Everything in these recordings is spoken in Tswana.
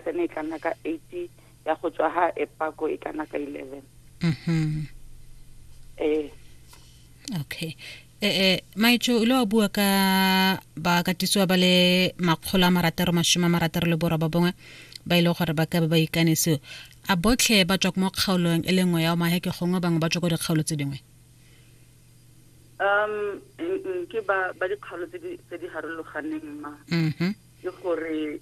Phesene e ka nna ka eight ya go tswa ha e pako e ka nna ka eleven mhm. ee okay e eh, e eh, maitso o ile wa bua ka bakatisiwa ba le makgolo a marataro masome a marataro le borwa ba bongwe ba ile e gore ba ka ba ba ikanisiwa a botlhe ba tswa mo kgaolong e le nngwe ya omaheke gongwe bangwe ba tswa ko dikgaolo tse dingwe um ke ba ba dikgaolo tse di tse di harologaneng ma mm-hmm. ke gore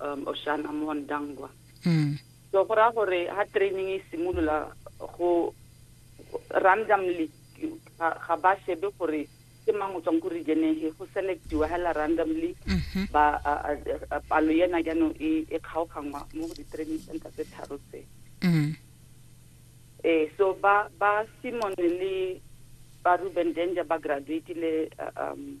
um Oshana mo Ndangwa mm. so go raya gore ha training e simolola go randomly ga ba shebe gore ke mang o tswang ko region efe go selectiwa hela randomly mm-hmm. ba palo ena jaanong e, e kgaoganngwa mo go di-training center tse tharo tse mm. eh so ba ba simone le ba ruben danger ba graduatile um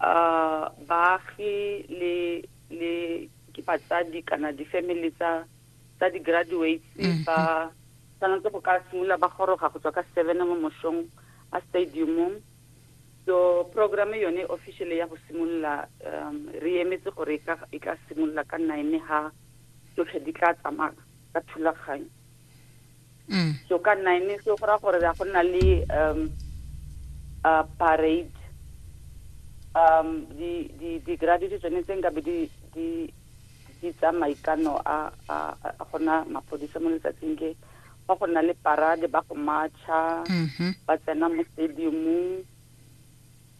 uh, baagi le le ke batsadi kana di-family tsa tsa di-graduates mm-hmm. ba tshwanetse go ka simolola ba goroga go tswa ka seven mo mosong a stadiumong so programme yone officially ya go simolola um re emetse gore e, e ka simolola ka nine ha tsotlhe di tla tsamaya ka thulaganyo mm. so ka nine so go ra gore ya go nna le um a parade um di di di graduate tsone tse nka be di di di tsa maikano a a gona mapodisa mo letsatsing ke ba go nna le parade ba go matcha mm-hmm. ba tsena mo stadiumong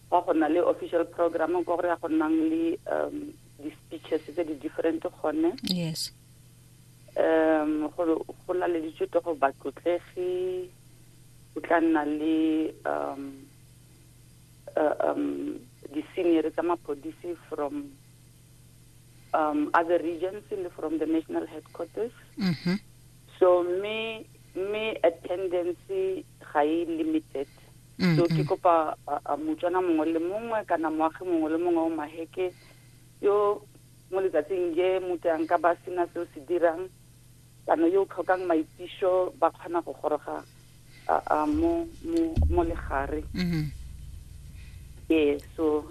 ba go nna le official program ko gore ya go nnang le um di-speeches tse di-different gone yes Um, go, go laleditswe to go batlotlegi go tla nna le um, uh, um, di-senior tsa mapodisi from um, other regions le from the national headquarters mm -hmm. so me me attendance ga e limited mm -hmm. so ke kopa uh, motswana mongwe le mongwe kana moagi mongwe le mongwe o maheke yo Mo letsatsing je mute a nka ba sena se o se dirang, kana yo o tlhokang maitiso ba kgona go goroga mo mo mo legare. Mhm. Ee, so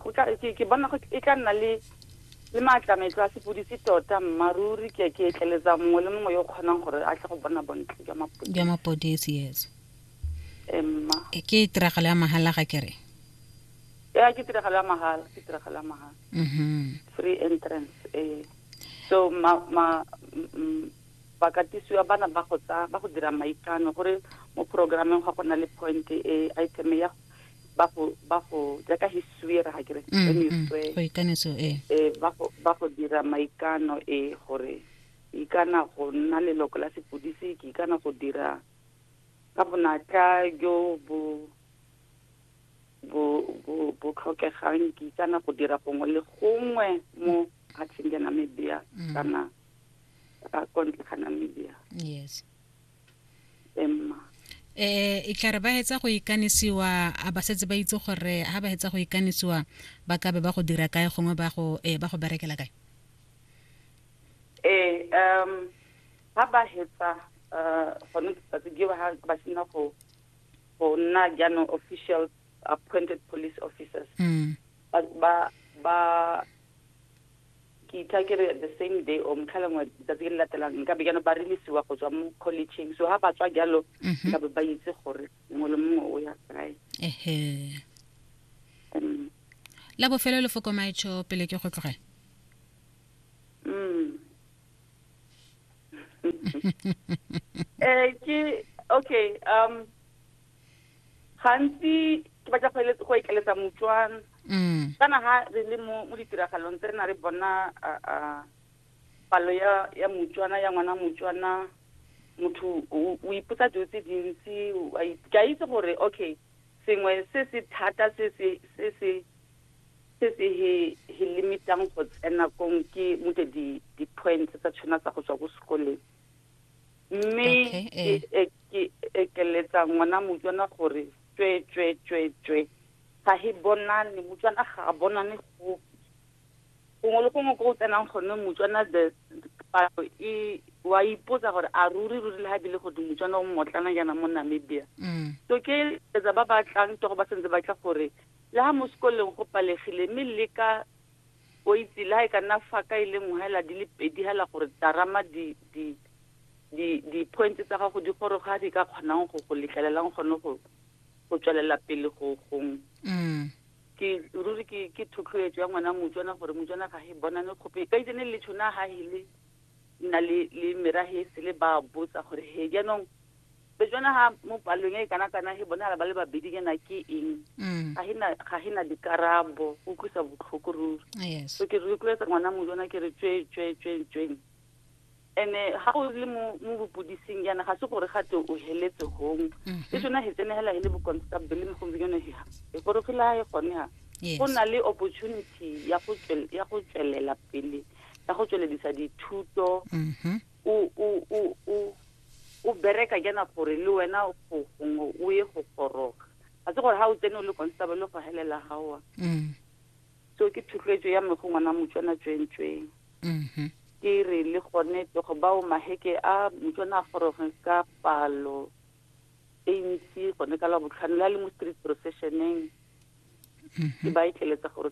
go tla ke bona go e tla nna le le maatlametlo a sepodisi tota mmaruri ke ke etleletsa mongwe le mongwe yo o kgonang gore a tle go bona bontle jwa mapodisi jwa mapodisi yes emma ke tiragalo ya mahala ga kere ya ke tiragalo ya mahala ke tiragalo ya mahala mm-hmm. free entrance eh so ma ma bakatisiwa bana ba go tsa ba go dira maikano gore mo programeng ga go na le point e item ya ba go ba go jaaka history ra ga kere mm, mm, mm. go ikanetso e eh, ba go ba go dira maikano e gore ikana go nna leloko la sepodisi ke ikana go dira ka bonatla jo bo bo bo bo tlhokegang kitsana go dira gongwe le gongwe mo patsheng ya namibia mm. kana ka kontle ga namibia yes emma eh e tla re ba hetsa go ikanisiwa a ba setse ba itse gore ha ba hetsa go ikanisiwa ba ka be ba go dira kae gongwe ba go eh ba go berekela kae eh um ha ba hetsa uh gone ke tsa ke ba ba sina go go nna jaanong official appointed police officers mm. ba ba ba ke itha ke re the same day or motlha lengwe letsatsi le latelang nka be jaanong ba relisiwa go tswa mo collegeng so ga ba tswa jalo mhm. nka be ba itse gore mongwe le mongwe o ya kae um, la bofelo le fokomaetsho pele ke go tlogela eh ke okay um gantsi ke batla go eletsa go ikeletsa motswana mm. kana ha re le mo mo ditiragalong tse re na re bona palo ya ya motswana ya ngwana motswana motho o ipotsa dilo tse dintsi ke a itse gore okay sengwe se se thata se se se se Se se hi hi limitang go tsena kong ke mute di di points tsa tshona tsa go tswa ko sekoleng. Mme Okay, ke eh. e ke ekeletsa ngwana motswana gore tswe tswe tswe tswe. Ga hi bonane motswana ga a bonane gope. Gongwe le gongwe ko o tsenang gone motswana the palo e wa ipotsa gore a ruri ruri le ha bile go di motswana o mmotlana jaana mo Namibia. Mm. So ke etsa ba ba tlang togo ba sentse ba tla gore Le ha mosekoleng go palegile, mme le ka, o itse, le ha e ka nna fa ka e le nngwe hela di le pedi hela gore tarama di, di, di, di-points tsa gago di goroge ha di ka kgonang go go letlelelang gone go, go tswelela pele go, gong. Mm. Ke, ruri ke, ke thotloetso ya ngwana Motswana gore Motswana ga he bonane kgope. Ka itse ne le tšhona ha hele. nna le le merahesi le ba botsa gore he jaanong bejona ha mo palong e kana kana he bona ba le babedi nyana ke eng mm. ga hina ga hina dikarabo o kusa botlhoko ruri yes so ke re kuletsa ngwana mo jona ke re tswe tswe tswe tswe ene ha o le mo mo bopodising yana ga se gore ga te o heletse hong mm-hmm. e tsona he tsenegela he le bo constable mo gombe yone he e gore fela e gone ha go na le opportunity ya go ya go tswelela pele ya go tsweledisa dithuto mm-hmm. o o o o o bereka jana gore le wena go gongwe o ye go goroga a se gore ga o tsene o le constable le go helela gaoa mm. so ke thotloetso ya mme go ngwana motswana tswentsweng mm-hmm. ke re le gone tlogo bao maheke a motswana a goroge ka palo e ntsi gone ka la botlhano le a le mo street processioneng mm-hmm. ke ba e tleletsa gore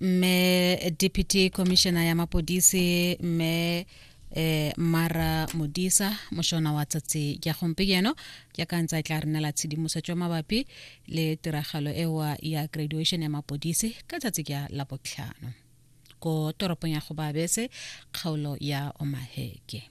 mme deputy commissioner ya mapodisi mme eh mara modisa moshona wa tsatsi ya gompieno ya ka ntse a tla re nela tshedimosetso mabapi le tiragalo ewa ya graduation ya mapodisi ka tsatsi ya la botlhano ko toropong ya go babese kgaolo ya omaheke